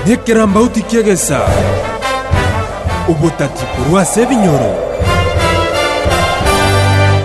Nekerambauti ki'egesa, obotati korwa ase ebinyoro.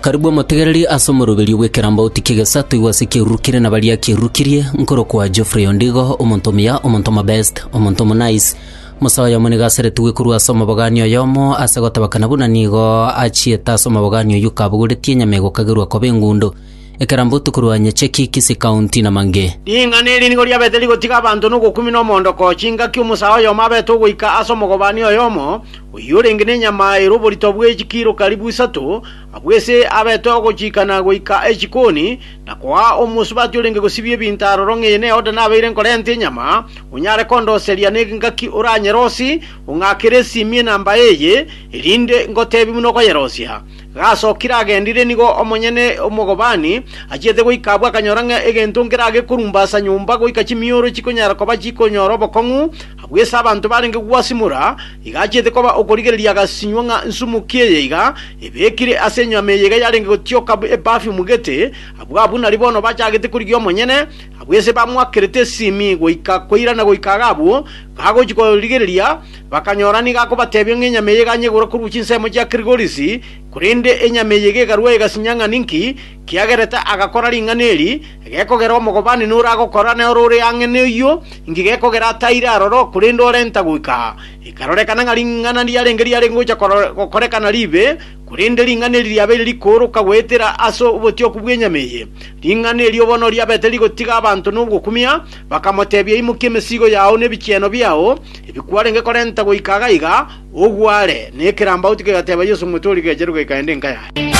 Karibu omotegereri ase omoroberio bw'ekerambauti ki'egesa toigwe ase ekiaruru kere na baria kiarurukirie, nkorokwa Geoffrey Ondigo, omonto omuya, omonto omobest, omonto omonice, mosae oyomo nigo aseretigwe korwa ase omobogani oyomo ase gotabakana buna nigo achiete ase omobogani oyio kabogoretie enyama egokagerwa koba engundo. Ekerambu tokorwany'eche ki Kisii County na Mange. Ring'ana eri nigo riabete rigotiga abanto nogokumia nomoondoko chingaki omosaa oyomo abete ogoika ase omogobani oyomo, oyio orenge nenyama ere oborito bwe chikiro karibu isato, abwo ise abete ogochiikana goika echikoni, na koaa omosubati orenge gosibia ebinto aroro ng'eye neode nabeire nkorenta enyama, onyare kondoseria n'engaki oranyerosi, ong'akere esimie namba eye, erinde ngoteebie buna okoyerosia. Gasokire agendire nigo omonyene omogobani achiete goika abwo akanyora ng'a egento nkera gekorumba ase nyomba goika chimioro chikonyara koba chikonyora obokong'u, agwo ase abanto barenge gwasimora, iga achiete koba okorigereria agasinywa ng'a nsumuki eye iga ebekire ase enyama eye iga yarenge gotioka eperfume gete, abwo abwo nari bono bachagete korigia omonyene, abwo ase bamoakerete esimi goika koirana goika iga abwo gagochia korigereria Bakanyora nigo akobatebia ng'a enyama eye eganye igurwe korwa chinsemo chia Kirigorisi, korende enyama eye iga ekarua egasinya ng'a ninki kiagerete agakora ring'ana eri, gekogera omogobani nore agokora, na ore ore ang'e noyio inki gekogera ataire aroro, korende orenta goika aa. Ekarorekana ng'a ring'ana riarenge riare gocha gokorekana ribe, korende ring'ana eri riabeire rikooroka goetera ase obotioku bw'enyama eye. Ring'ana erio bono riabete rigotiga abanto nogokumia, Bakamotebia, Imokia emesigo yao na ebichieno biao, ebi kwarenge korenta goika iga iga, ogware. Na ekerambauti kegateba Yeso, Omwete oria gecherwe goika ende enka yaye.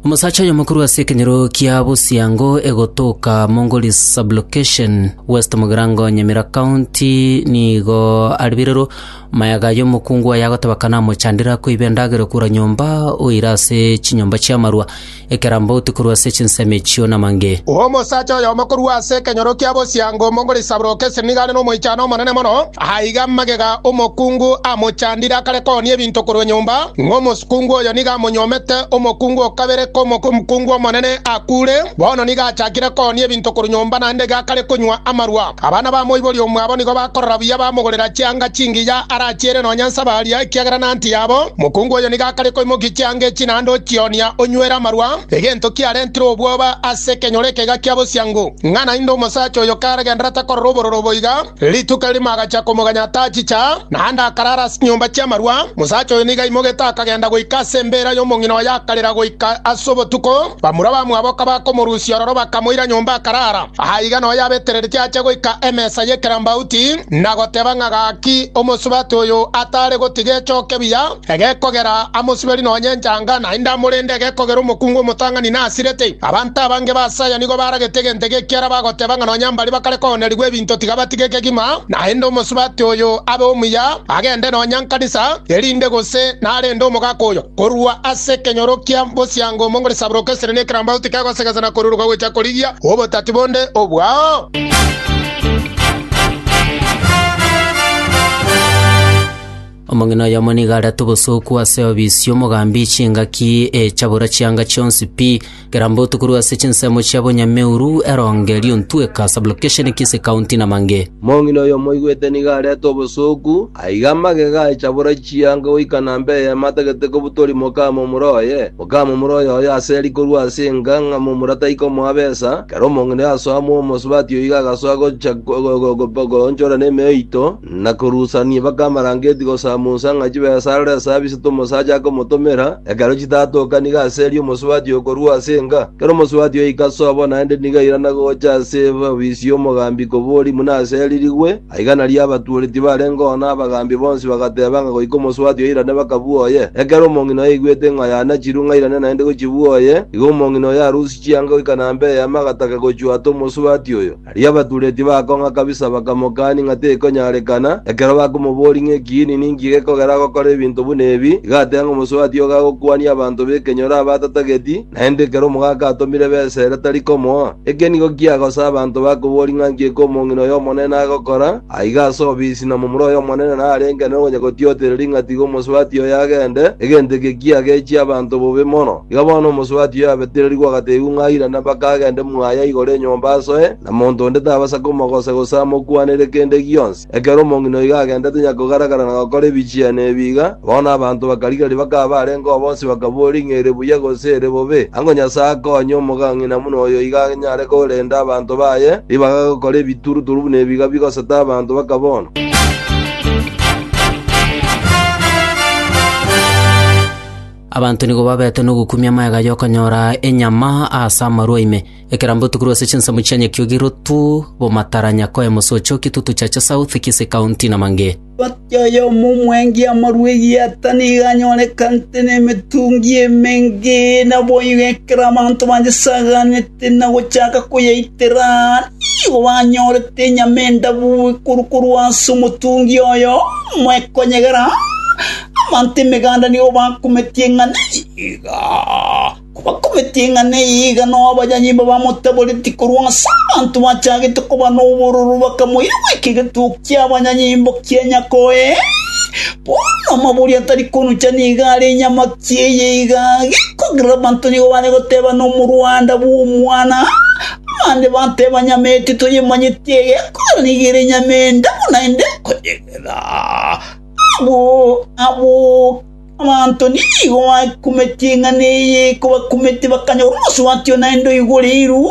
Omosacha oyomokuru ase ekenyoro kia Busiango egotoka Mongoli Sublocation, West Mugirango, Nyamira County nigo aribirero Maega y'omokungu oyo agotebeka namochandire akoiba endagera okura nyomba, oire ase chinyomba chi'amarua, ekerambauti korwa ase chinsemo echio namange. Omosacha oyomo korwa ase ekenyoro kia bosiango omong'ori Saburoke esenigane nomoichano omonene mono, aiga magega omokungu amochandire akare koonia ebinto korwa nyomba, ng'omosukungu oyo nigo amonyuomete omokungu o kabere k'omokungu omonene akuure, bono nigo achakire koonia ebinto korwa nyomba naende iga akare konywa amarua. Abana ba moibori omwabo nigo bakorora buya bamogorera chianga chingiya arachiere nonya Samaria, ekiagera naanti yabo. Mokungu oyo nigo akare koimokia chianga echi naende ochionia onywere amarwa, egento kiarentire obwoba ase ekenyoro ekeiga kia bosiango, ng'a naende omosacha oyo karagenderere takorora obororo oboiga. Rituko erimo agacha komoganya atachicha, naende akarara ase chinyomba chi'amarwa. Mosacha oyo nigo aimogete akagenda goika ase embeera y'omong'ina oye akarira goika ase obotuko. Bamura bamwabo kabakomorusia ororo bakamoira nyomba akarara. Aa iga noyo abetereretie ache goika emesa y'ekerambauti, na goteba ng'a gaki omosubati oyo atare gotiga echoke buya, egekogera amosuberi nonya enchanga, naende amorende egekogera omokungu omotang'ani nasirete. Abanto abange basaya nigo baragete egento eke ekiara bagoteba ng'a nonya mbaria bakare koonerigwa ebinto tiga batige kegima, naende omosubati oyo abe omuya, agende nonya nkanisa, erinde gose narende omogaka oyo. Korwa ase ekenyoro kia bosiango mongore saburoka esere na ekerambau tikegoseegesa na koruruka gocha korigia obotati bonde obwao. Omong'ina oyomo nigo arete obosooku ase obisi omogambi chingaki echabora chianga chionsi pi. Kera mbotu korwa ase chinsemo chia Bonyameuru, Eronge, Liontweka, Sublocation, Kisii County, na mang'e. Mong'ina oyo moigwete nigo arete obosooku, aiga magega aye chabora chianga goika na mb'eyemo atagete kobutoria mokaama omura oye. Mokaama omura oyo oye aseri korwa ase enga ng'a momura taikomoa besa, kera omong'ina oyo asoa momo, Subati oiga agasoa gocha goonchora nemeo eito, Na korusania mpaka amarangeti gosamunsa ng'a chibesarore ase abise t'omosacha akomotomera, ekero chitatoka nigo aserie omosubati okorua ase enga. Ekero omosubati oika ase obo naende nigo airana gocha ase obisi y'omogambi kobori buna aseririgwe, aiga nario abatuoreti barenge oo na abagambi bonsi bagateba ng'a goika omosubati oirane bakabua oye. Ekero omong'ina oyaigwete ng'a yanachirwe ng'a airane naende gochibua oye, igo omong'ina oyo arusia chianga goika nambe eema agataka gochwata omosubati oyo. Erio abatureti bakong'a kabisa bakamokania ng'a tekonyarekana, ekero bakomoboria ng'a ekiini ninki gekogera agokora ebinto buna ebi, iga ateba ng'a omosubati ogo agokwania abanto b'ekenyoro aba atatageti, naende ekero omogaka atomire besa ere tari komoa. Eke nigo kiagosa abanto bakoboria ng'a nki ekomong'ina oy'Omonene agokora, aiga ase obisi na momura oy'Omonene narenge nere ogonya gotiotereria ng'a tiga omosubati oyo agende, egento eke kiagechie abanto bobe mono. Iga bono omosubati oyo abetererigwe agateebigwa ng'a airane mpaka agende mwaye igoro enyomba asoe, na monto onde tabasa komogosa gose amokwanere kende gionsi. Ekero omong'ina oigo agendete nyakogara-gara na gokora ebichiani ebi iga, bono abanto bakarigereria bakaba barenge oo bonsi bakaboria ng'a ere buya gose ere bobe. Ango Nyasae akonye omogang'ina buna oyo iga anyare korenda abanto baye ribaga gokora ebituruturu buna ebi iga bigoseta abanto baka bono. Abanto nigo babete nogokumia magega y'okonyora enyama ase amarwa ime. Ekera mbotuku rwase chinsemo chia nyakiogi rotu, bomataranya koe mosocho, kitutu chacha south, kise county na mange. Gati oyomo omwengi amarwa egieta nigo anyorekante nemetungi emenge, naboigo ekero abanto banyesaganete. na gochaka koyaitera, nigo banyorete enyama endabu ekuru korwa ase omotungi oye oyomo ekonyegera. Abanto emeganda nigo bakometie ng'a nigo kobakometie ng'a nigo nabanyanyimba bamotaboreti korwa ase abanto bachagete koba nobororo, bakamoira goika egetugi ki'abanyanyimbo kia nyakore. Bono amabori atari konucha nigo are enyamaki eye iga, gekogera abanto nigo bare goteba nomorwanda bw'omwana, abande bateba nyama eye titoyemanyeti egekogera nigo ere nyama enda buna ende ekoyegera. Abwo abwo abanto nigo bakumeti eng'ana eye kobakumeti bakanyora omosubati onaende oigoreirwe.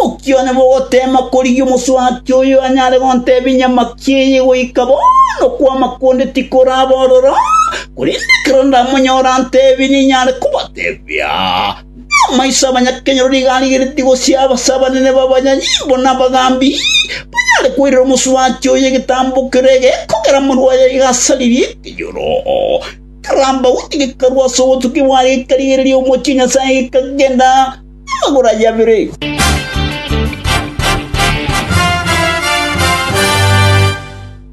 Omokione bw'ogoteema korigia omosubati oyo anyare gontebia enyamaki eye goika bono kwama konde tikoraba ororo, korende ekero ndamonyore antebie ninyare kobatebia. Namaiso abanyakenyoro nigo arigeretie gosia ase abanene b'abanyanyimbo na abagambi, banyare koirera omosubati oyo egetambo kere gekogera morwa oye gasaririe ekenyoro. Ekerambauni gekarwa ase obotuki bwaye gekarigereria omochie Nyasaye gekagenda. Amagoro aye abere.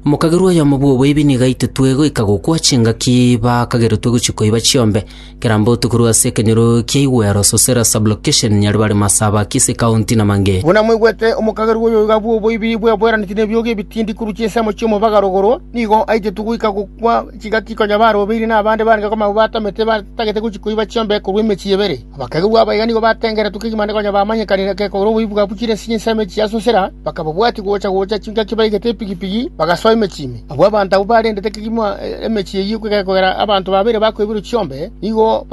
Omokagerwa oyomo bw'oboibi nigo aititwe goika gokwa chingaki bakageretwe gochia koiba chiombe kera mbotuko korwa ase ekenyoro kia Igwero, Sosera Sub-location, Nyaribari, Masaba, Kisii County na mangĩ. Buna mwaigwete, omokagerwa oyo iga bw'oboibi bweboeraneti nebiogi ebitindi korwa chinsemo chi'omobaga rogoro, nigo aitetwe goika gokwa chingaki konya barobeirie na abande baarenge komama batamete batagete gochia koiba chiombe korwa emechie ebere. Abakegerwa abaiga nigo batengeretwe kegima ande konya bamanyekanire gekogera oboibi bwabo chire chinsemo echi chiasosera, bakababwatia gocha-gocha chingaki baigete epigipigi, bagasoa emechie ime. Abwo abanto abwo barendete kegima emechie eyio gekogera abanto babeire bakoiberwa chiombe, nigo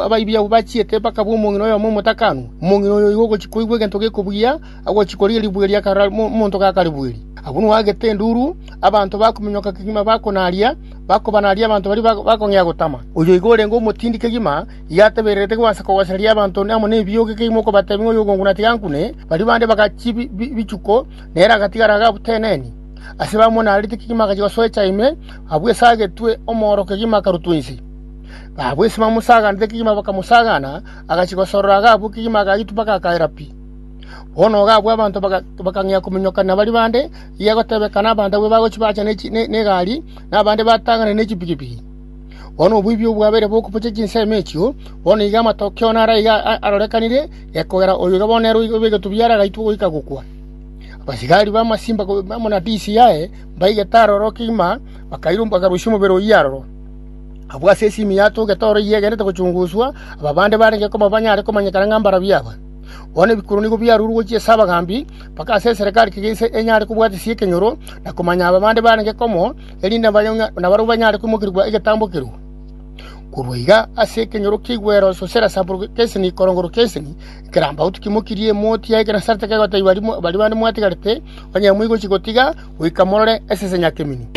abaibi abwo bachiete bakabua omong'ina oyomo omotakanwa. Omong'ina oyo oigwa ogochia koigwa egento gekobugia, agochia korigia ribuge ria karora omonto gakaribueri. Agwo noagete enduru, abanto bakominyoka kegima bakonaria, bakobanaria abanto baria bakong'ea gotama. Oyo oiga orenge omotindi kegima, Yatebererete goansa kogosereria abanto amo nebiogi ekeimo mokobatebia ng'a oyobongo natiga ankune. Baria bande bagachia ebichuko, na ere agatigara agatenenia. Ase bamwe narete kegima agachia gosoa echa ime, abwo esagetwe omooro kegima akarutwa inse. Abwo ase bamosaganete kegima bakamosagana, agachia gosorora agabua kegima agaitwa mpaka akaera pi. Bono ogabua abanto bakang'ea kominyokana baria bande, eria egotebekana abanto abwo bagochia baacha negari, na abande batang'ane nechipigipigi. Bono oboibi obwabeire bokobochia chinsemo echio, bono igo amatokeo naro aiga arorekanire, gekogera oyo iga bono nere obegetwe biara agaitwa goika gokwa. Abasigari b'amasimba amo na tisi yaye mbaigete aroro kegima, bakarusia omobere oyio aroro. Abwo ase esimi ya Tobeta oro eyio egenderete gochunguswa, aba bande barenge koma banyare komanyekana ng'a mbarabwo aba. Bono ebikuro nigo biarurwe gochia ase abagambi, mpaka ase eserekari kegima enyare kobwatisia ekenyoro, na komanya aba bande barenge komo, erinde nabarabwo banyare kwemokerigwa egetambokerwa. Korwa iga ase ekenyoro ki'igwero Sosera Sabulo Keseni Korongoro Keseni ekerambaotu kimokirie emoti yaye ekero nasarete kegotebiwa baria bande mwatigarete, Onye moigochi gotiga, goika morore esese nyakemeni.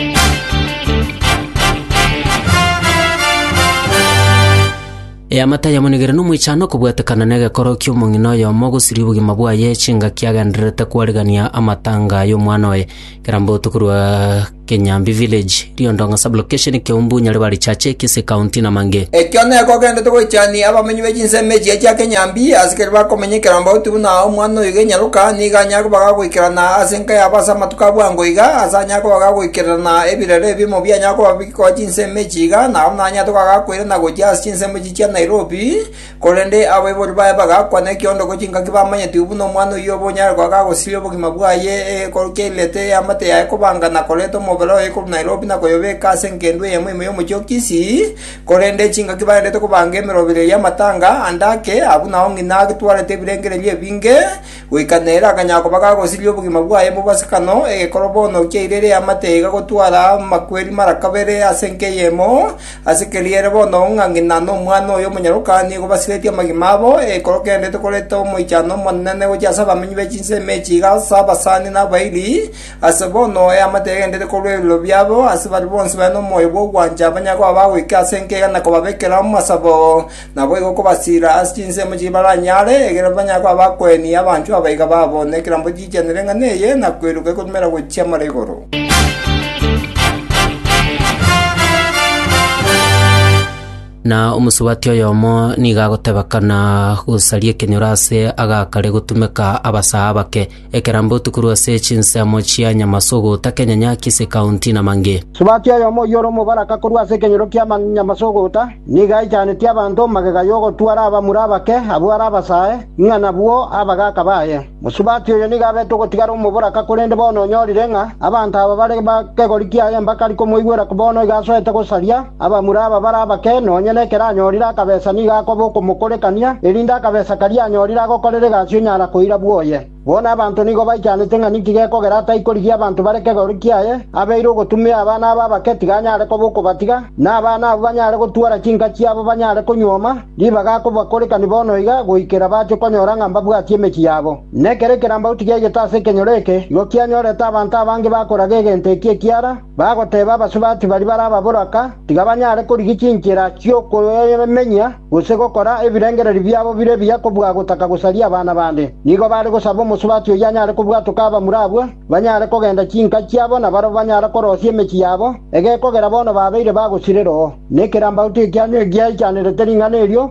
Eamate ayamonigire nomoichano okobwatekana negekoro ki'omong'ina oyomo gosiria obogima bwaye chingaki agendererete kwarigania amatanga ay'omwana oye. Kerambotu korwa Kenyambi Village, Riondong'a Sub-Location, Keumbu, Nyaribari Chache, Kisii County na mangĩ. Ekio nekogendete goichani abamenyi be chinsemo echi chia Kenyambi, ase keria bakomenya ekerambotu buna omwana oyoiga enyaroka, nigo anyare koba gagoikerana ase enka yabo ase amatuko a bwango iga, ase anyare koba gagoikererana ebirero ebimo bianyare koba bigoa chinsemo echi iga, nabo naranyare toka gakoirana gochia ase chinsemo echi chia Nairobi, Korende abaibori baye bagakwa nekiondoko chingaki bamanyetigwe buna omwana oyio obe onyare goaka agosiria obogima bwaye egekoru kiairete eamate yaye kobanga na koreta omobere oye korwa Nairobi na koyobeka ase engendu eyemo ime y'omochie o Kisii, korende chingaki baerete kobanga emeroberio y'amatanga ande ake, abwo nao ng'ina agetwarete ebirengererio ebinge, Goika nere akanyara koba gagosiria obogima bwaye mobasikano, egekoro bono kiairire eamate iga gotwara amakweri mara kabere ase enka eyemo, ase keria ere bono ng'a ng'ina nomwana oye omonyaroka nigo basiretie amagima abo, egekoro kegendererete korenta omoichano omonene gochia ase abamenyi be chinsemo echi iga ase abasani na abairi, ase bono eamate egendererete korwa ebiroro biabo, ase baria bonsi bare nomoyo bw'ogwancha banyare koba bagoika ase enka iga na kobabekera amasabo. Naboigo kobasiira ase chinsemo chibaranyare, ekiagera banyare koba abakueni abanchwa abaiga babo, na ekerambe giichanere ing'ana eye, na koiroka egotumera gochia mare igoro. Na omosubati oyomo nigo agotebekana gosaria ekenyoro ase agakare gotumeka abasaa abake, Ekero mbotu korwa ase chinsemo chia Nyamasogo, takenyanya Kisii County na Mange. Subati oyomo oyio ore omobaraka korwa ase ekenyoro kia Nyamasogoota, nigo aichaneti abanto magega y'ogotwara abamura abake abwo are abasae, ng'a nabwo abagaaka baye. Mosubati oyo nigo abete ogotigara omoboraka korende bono onyorire ng'a abanto aba bare bakegori kiaye mbakari komoigwera bono iga asoete gosaria. Abamura aba bare abake, nonya nekero anyorire akabesa nigo akoba okomokorekania, erinde akabesa karia anyorire agokorere egasi onyara koira bwoye. Bono abanto nigo baichanete ng'a ninki gekogera ataikorigia abanto bare kegoru kiaye, abeire ogotumia abana abo abake tiga anyare koba okobatiga, na abana abwo banyare gotwara chinka chiabo banyare konyuoma ribaga akobakorekani bono iga goikera bache konyora ng'a mbabwatie emechie yabo. Nekero ekerambaoti giaigete ase ekenyoro eke, igo kianyorete abanto abange bakoraga egento eki ekiara, Bagoteeba abasubati baria bare ababoraka tiga banyare korigia chinchera chi'okoyemenya gose gokora ebirengererio biabo bire ebiya kobua gotaka gosaria abana bande. Nigo baare gosaba omosubati oyio anyare kobwatoka abamura abwo banyare kogenda chinka chiabo na barabwo banyare korosia emechie yabo egekogera bono babeire bagosirereo. Nekerambaotu ekianyu egiaichanerete ring'ana erio.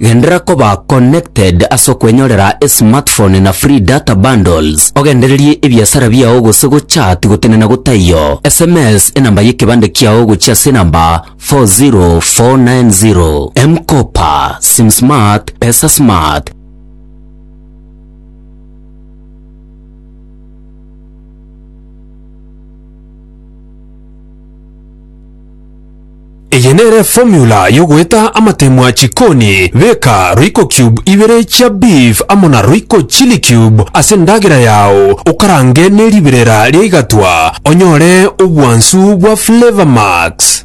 Genderera koba connected ase okwenyorera esmartphone na free data bundles, ogendererie ebiasara biao gose gochat gotenena gotaiyo, sms enamba y'ekebande kiao gochia ase enamba 40490. M-kopa, Sim Smart, Pesa Smart. Eye nere formula yogoeta amatemwa chikoni, beka royco cube ibere chia beef amo na royco chili cube ase endagera yao okarange ne riberera ria igatwa onyore obwansu bwa flavor max.